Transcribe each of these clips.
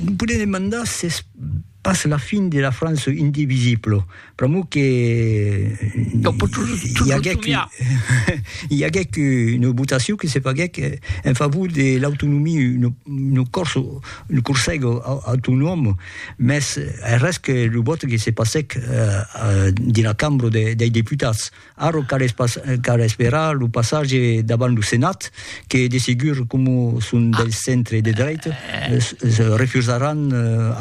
Vous pouvez demander si c'est pas la fin de la France indivisible. Pr'amor que i aguèc i aguèc una votacion que se faguèc en favor de l'autonomia, un corso, un corsèg autonòm, mès es res que lo vòte que se passèc dins la cambra dei deputats. Ara cal esperar lo passatge davant lo Senat que de segur, coma son del centre de drech, refusaràn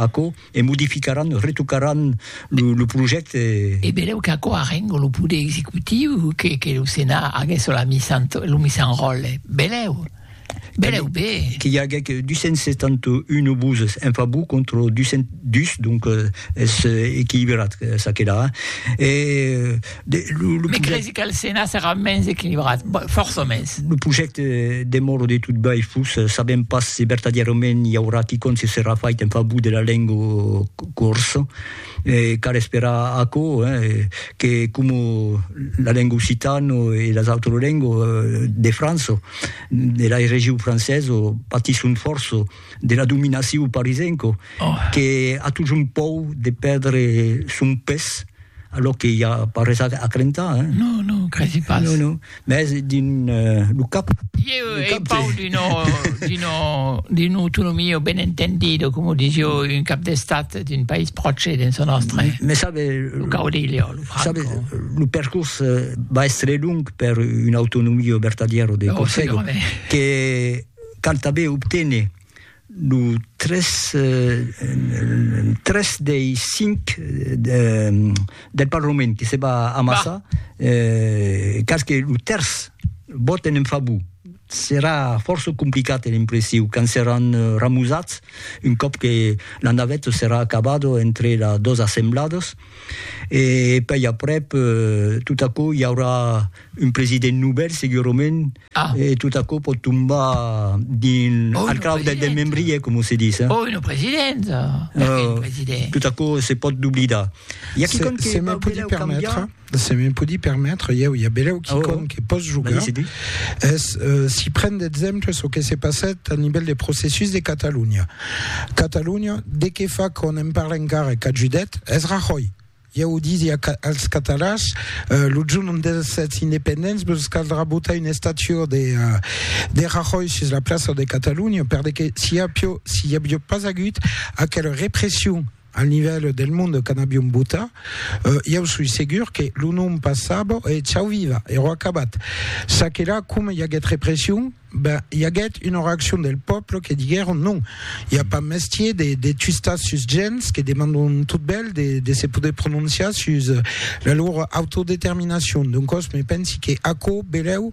aquò e modificaràn, retocaràn lo projècte. E benlèu qu'aquò arrenga lo poder executiu que lo Senat aguèsse lo misan ròtle. Benlèu. Belèu be! Qu'i aguèc 271 obuses en favor contra 202, donc es equilibrat ça que la. E de lo, lo. Me cresi qu'al Senat serà mens equilibrat, fòrça mens. Lo projècte demòra de tot bèi fus, sabèm pas se vertadièrament i aurà quicòm se serà fait en favor de la lenga corsa. E cal esperar aquò, que coma la lenga occitana e las autras lengas de França, de la region francesa, patisson fòrça de la dominacion parisenca, que a totjorn pòur de pèrdre son pes, alòr que i a pas res a crentar. Non, non, cresi pas. Mès dins lo cap. Ieu ei pau d'una autonomia ben entendida, coma o disio un cap d'estat d'un país pròche dins lo nòstre. Mès sabe, lo caudillo, lo Franco. Sabe, lo percors va èstre long per una autonomia vertadièra de Còrsega, que canta ben obténer Lo tres, tres dei cinc del Parlament que se va amassar, cas que lo tèrç vòten en favor. Serà fòrça complicat, è l'impressiu, quand seràn ramosats, un còp que la naveta serà acabada entre las dos assembladas, e puèi aprèp, tot aquò, i aurà un president novèl, segurament, E tot aquò pòt tombar dins al crau del desmembrier, coma se ditz. Oi, lo president! Perqué lo president? Tot aquò se pòt doblidar. I a quicòm que vau belèu cambiar? Se me podi permetre, ieu, i a belèu quicòm que pòs jogar, es si pren d'exemple çò que se passèt a nivèl de processus de Catalonha. Catalonha, de qué fa qu'òm en parla encara e qu'ajudèt? Es Rahòi! Ieu disi als catalans, lo jorn ont èssetz independents vos caldrà botar una estatua de Rajoy sus la plaça de Catalunya, per de que si i aviá pas agut aquela repression al nivèl del monde quand aviom botat, ieu soi segur que lo nom passava e chau viva, ero acabat. Ça que la, coma i aguèt repression, Ben, i aguèt una reaccion del pòble que diguèron non, i a pas mestier de, de twistar sus gents que demandon tot bèl de, de se poder prononciar sus la lor autodeterminacion. Doncòs, me pensi que aquò belèu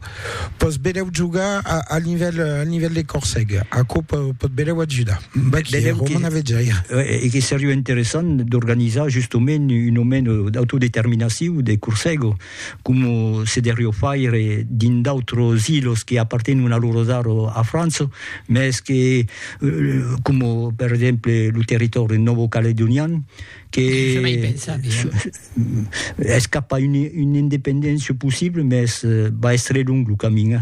pòs belèu jogar a, al nivèl, al nivèl de Corseg. Aquò po, pòt belèu ajudar. Vaquí, Belèu que- Roman Avejaire. Eh, e que seriá interessant d'organizar justement un moment d'autodeterminaciu de Corsego. coma se derrió faire dins d'autros ilos que apartenon a loro zaro a França, mès que, coma per exemple lo territòri novocaledonian, que es cap a una independéncia possibla, mès va èstre long lo camin.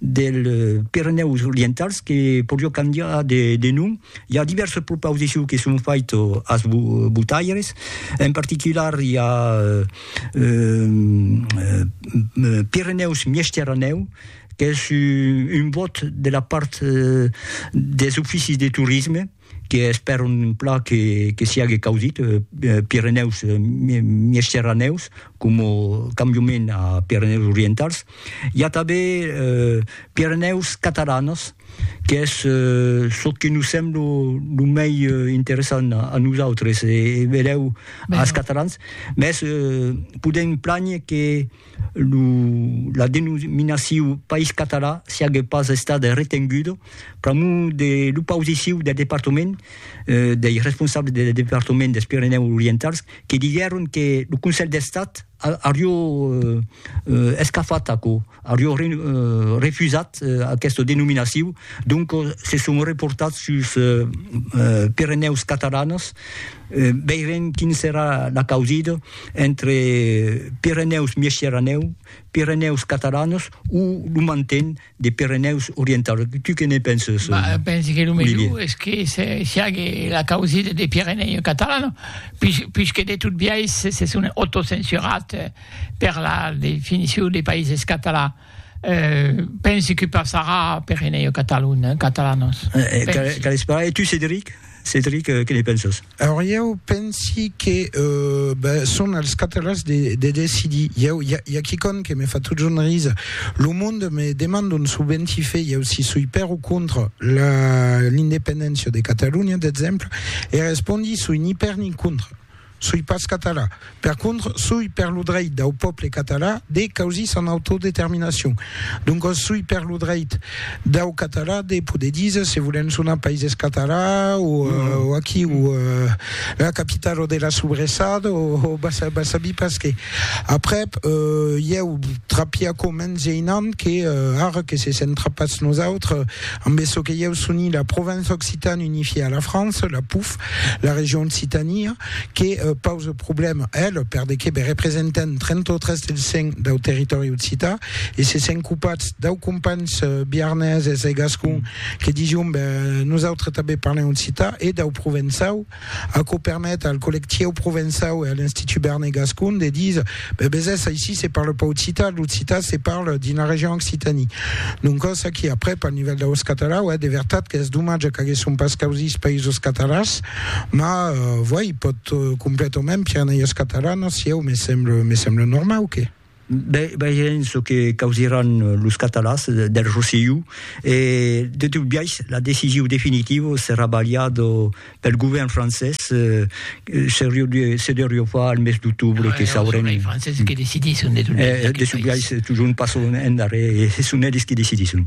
dels Pirenèus Orientals que podió cambiar de nom. I a divèrses propausicion que son faito as botaires, en particular i a Pirenèus Miesteranèu qu'es un bòt de la part des oficis de torisme, que espèron un plan que que siague caudit Pirenèus Miesceranèus coma cambiament a Pirenèus Orientals. I a tanben Pirenèus Catalanas qu'es çò que nos sembla lo mei interessant a nosautres e benlèu as Catalans, mès podèm plànher que lo, la denominaciu País Català siague pas estada retenguda pr'amor de l'opausiciu del departament, dei responsables del departament dels Pirenèus Orientals, que diguèron que lo Conselh d'Estat aurió escafat aquò, aurió refusat aquesta denominaciu, doncas se son reportats suls Pirenèus Catalans, Veirem quin serà l'acausit entre Pirenèus Miesciranèu, Pirenèus Catalanos o lo manten de Pirenèus Orientaus. Tu que ne penses? Bah, pense que lo melhor es que se siague l'acausit de Pirenèus Catalanos, pus, pus que de tot biais se son autocensurat per la definicion de Païses Catalans. Pensi que passarà per enèia Catalonha, Catalanos. Cal esperar. E tu, Cedric? Cedric, que ne pensas? Alors, ieu pensi que son als catalans de decidir. Ieu, i a quicòm que me fa totjorn risar. Lo monde me demanda un subenti fe ieu si soi per o contra l'independéncia de Catalonha, d'exemple, e respondi soi ni per ni contra. Soi pas català. Per contra, soi per lo dreit dau pòble català de causir son autodeterminacion. Doncas soi per lo dreit dau català de poder díser se volèm sonar Païses Català o aquí o la capitalo de la sobressada o va sabir pas qué. Aprèp, ieu trapia aquò mens geinant que ara que se sent trapats nosautres ambe çò que ieu soni la Provence Occitane unifiée à la France, la POUF, La region Occitania que pausa problèma, ela, per de que be representant 33% dau territòri occità e se sent copats dau companhs biarneses e gascon que dision be nosautres tanben parlem occità e dau provençau, aquò permet al collectieu provençau e a l'Institut Berner Gascon de díser Be besés aicí se parle pas occitan, l'occitan se parle dins la region Occitanie. Doncòs aquí aprèp al nivèl daus catalans, uèi de vertat qu'es domatge qu'aguèsson pas causís països catalans, ma vuèi pòt completament pièr n'ai es catalanos, sieu me semble me semble normau que. Be vegèm çò que causiràn los catalans del Rosselló e de tot biais la decision definitiva serà balhada pel govèrn francés se deurió far al mes d'octobre que saurem es franceses que decidisson de tot de sublais totjorn pas son endarrèr e son eles que decidisson